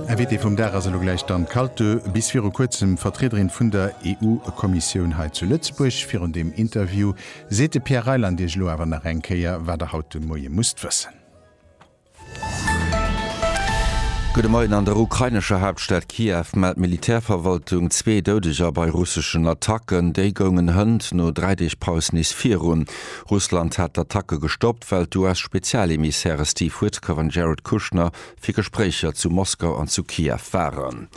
Invitée vum Dag ass elo gläich d'Anne Kalto, bis viru kuerzem Vertriederin vun der EU-Kommissioun hei zu Lëtzebuerg. Virun deem Interview seet de Pierre Reyland Iech elo awer nach eng Kéier, wat Der haut de Moie musst wëssen. Gudde Moien. An der ukrainescher Haaptstad Kiew mellt d'Militärverwaltung zwee Doudeger bei russeschen Attacken. Déi goungen hënt no dräi Deeg Paus nees virun. Russland hat d'Attacke gestoppt. well d'US-Spezialemissäre Steve Witkoff an Jared Kushner fir Gespréicher zu Moskau an zu Kiew waren.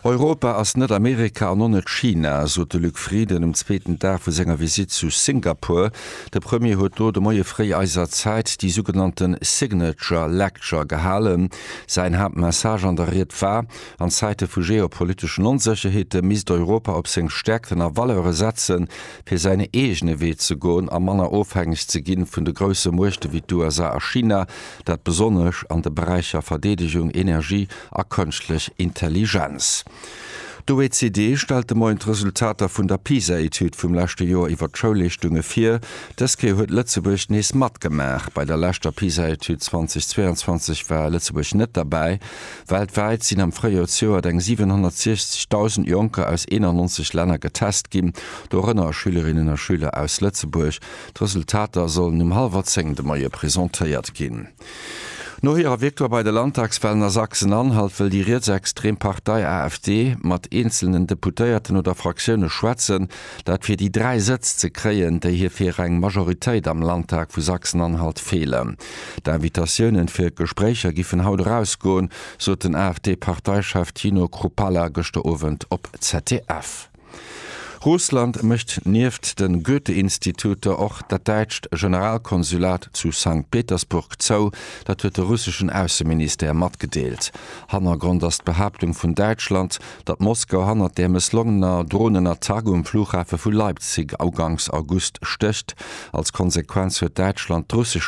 Europa ass net Amerika an och net China, sot de Luc Frieden um zweeten Dag vu senger Visitt zu Singapur. De Premier huet do de Moie fréi eiser Zäit déi sougenannte Signature Lecture gehalen. Säin Haaptmessage an der Ried war, an Zäite vu geopoliteschen Onsécherheete misst Europa op seng Stäerkten a Valeure setzen, fir säin eegene Wee ze goen a manner ofhängeg ze ginn vun de grousse Muechte wéi d'USA a China, dat besonnesch an de Beräicher Verdeedegung, Energie a Kënschtlech Intelligenz. D'OECD stellt de Moien d'Resultater vun der PISA-Etüd vum leschte Joer iwwer d'Schoulleeschtunge vir. Dës Kéier huet Lëtzebuerg nees matgemaach. Bei der leschter PISA-Etüd 2022 war Lëtzebuerg net derbäi. Weltwäit sinn am Fréijoersjoert eng 760.000 Jonker aus 91 Länner getest ginn, dorënner Schülerinnen a Schüler aus Lëtzebuerg. D'Resultater sollen um hallwer zéng de Moie presentéiert ginn. No hirer Victoire bei de Landtagswalen a Sachsen-Anhalt wëll déi rietsextrem Partei AfD mat eenzelnen Deputéierten oder Fraktioune schwätzen, dat fir déi dräi Sëtz ze kréien, déi hir fir eng Majoritéit am Landtag vu Sachsen-Anhalt feelen. D'Invitatiounen fir Gespréicher giffen haut erausgoen, sot den AfD-Parteichef Tino Kruppalla gëschter Owend op ZDF. Russland mécht nieft de Goethe-Instituter och dat däitscht Generalkonsulat zu Sankt Petersburg zou. Dat huet de russeschen Ausseministère matgedeelt. Hannergrond ass d'Behaaptung vun Däitschland, datt Moskau hannert där mësslongener Dronenattack um Flughafe vu Leipzig uganks August stécht. Als Konsequenz huet Däitschland d'russesch.